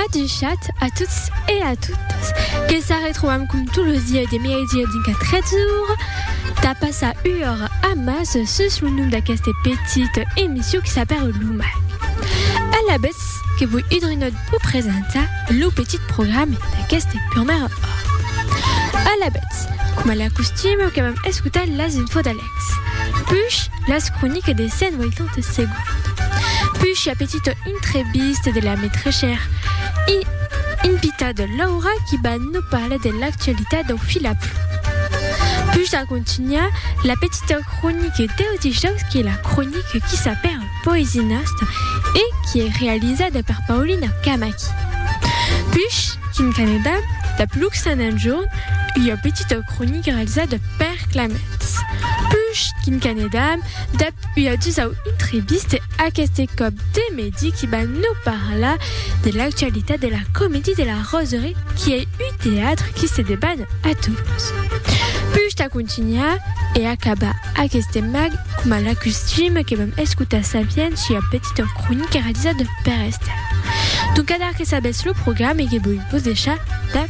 Adushat a tots e a totas que s'arretrobam com tot los dies de miedia dinc a 13 ora tà passar ua ora a mas sus lo nom d'aqueste petit emission qui s'apèra Lo Mag. Alavetz que voi idrinòt vos presentar lo petit programe d'aqueste purmèra ora. Alavetz, coma l'acostime que vam escotar las infos d'alèr. Push, las croniques de Sen 80 segonds. Push, a petita intrevista de la metrechèr i invita de Laura qui va no parlar de l'actualitat dau fil a plom. Push a contunhar la petita cronique deu dijaus qui es la cronique qui s'apèra Poesinas e qui es realizada per Paulina Camaki. Push, quin Canada, dab Luxan enjorn, ua petita cronique realizada per Clement. Ps, push quin canedam, dab ua dusau intribiste, aqueste còp de medi qui va nau parlar de l'actualitat de la Comédie de la Roserie qui ei uu teatre qui se deban a Toulouse. Push tà contunhar e acabar aqueste mag coma la custime que vam escotar sabian sua petita cronica realizada per Esther. Doncadar que sabetz lo programe que voi vos deixar dab.